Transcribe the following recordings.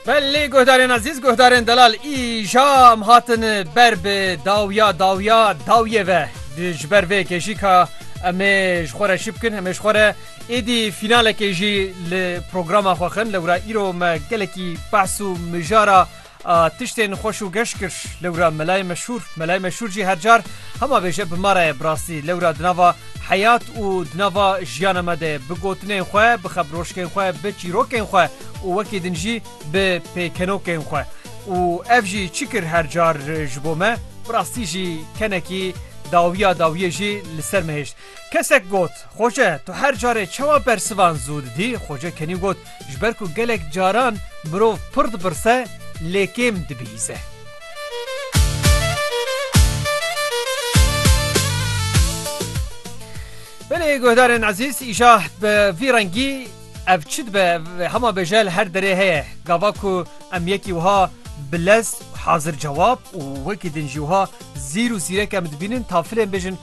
Belê guhdarên ezîz, guhdarên delal îjam hatin ber bi dawiya dawiya dawiyê ve. Ji ber vê yekê jî ka em ê ji xwe re çi bikin, em ê ji xwe re êdî fînalekê jî li programa xwe xin. Lewra îro me gelekî behs û mijara A tiştên xweş û geş kir. Lewra melayê meşhûr. Melayê meşhûr jî her car hema bêje bi ma re ye. Bi rastî lewra di nava heyat û di nava jiyana me de bi gotinên xwe, bi xebroşkên xwe, bi çîrokên xwe û wekî din jî bi pêkenokên xwe. Û ev jî çi kir her car ji bo me? Bi rastî jî kenekî dawiya dawiyê jî li ser me hêşt. Kesek got, Xoce, tu her carê çawa bersivan zû didî? Xoce kenî got, Ji ber ku gelek caran mirov pir dipirse, lê kêm dibihîze. Belê guhdarên ezîz, îşa bi vî rengî ev çi dibe hema bêje li her derê heye. Gava ku em yekî wiha bi lez hazir cewab û wekî din jî wiha zîr û zîrek em dibînin tafilên bêjin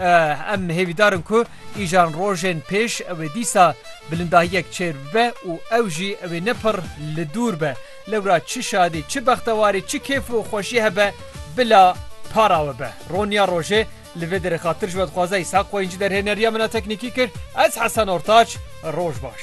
Em hêvîdar in ku îjan rojên pêş wê dîsa bilindahiyek çêr bibe û ew jî wê ne pir li dûr be. Lewra çi şadî, çi bextewarî, çi kêf û xweşî hebe bila para we be. Roniya rojê li vê derê xatir ji we dixwaze Îshak Qoyîncî derhêneriya min a teknîkî kir. Ez Hesen Ortaç, roj baş.